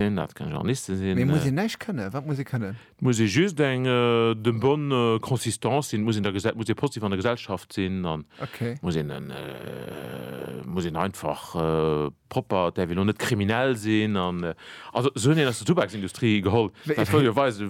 sinn, dat kann Journaliste sinn. Mee muss een näischt kënnen? Wat muss ee kënnen? Et muss ee just eng de bonne consistance sinn, et muss een der Gesell, et muss ee positiv an der Gesellschaft sinn an et muss een en, et muss een einfach propper, et däerf een elo net kriminell sinn an, also se hunn een aus der Tubaksindustrie geholl, dat wëll jo weisen,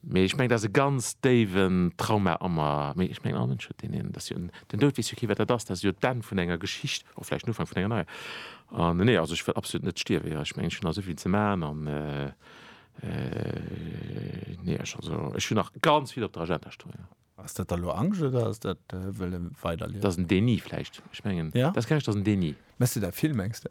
Mee ech mengen dat ass e ganz déiwen Trauma a mer. Mee ech mengen all Mënsch huet deen een. Dat ass jo en, den Doud weess jo kee wat dat ass, dat ass jo d'Enn vun enger Geschicht, och vläicht den Ufank vun enger neier. An nee, also ech wëll absolut net stierwen, jo ech mengen ech hunn nach esou vill ze maachen an nee ech, also ech hunn nach ganz vill op der Agenda stoen, jo. Ass dat da lo Angscht oder ass dat wëlle weiderliewen? Dat ass en Déni vläicht, ech mengen dat ass keng Angscht, dat ass en Déni. Mess de dat vill, mengs de?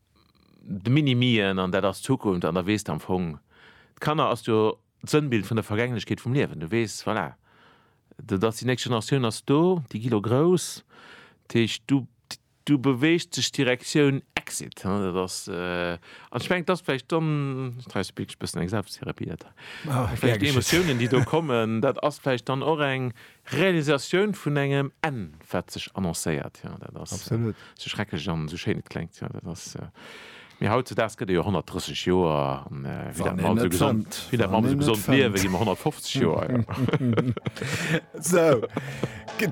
de Mini-Mien an dat ass d'Zukunft an da weess de am Fong, d'Kanner ass jo d'Sënnbild vun der Vergänglechkeet vum Liewen. Du weess, voilà, dat ass déi nächst Generatioun ass do, déi gi lo grouss, dat heescht du du beweegt sech Direktioun Exit, hein, dat ass an ech mengen et ass vläicht dann, ech treiwes e béchs bëssen eng Selbsttherapie dat hei, vläicht déi Emotiounen déi do kommen, dat ass vläicht dann och eng Realisatioun vun engem Enn, wat sech annoncéiert. Jo, dat ass esou schrecklech an esou schéin et kléngt. Jo, dat ass, mee hautzedaags gëtt ee jo 130 Joer an wéi dat mer alles esou gesond, wéi dat mer alles esou gesond liewen, gi mer 150 Joer. Jo. Esou.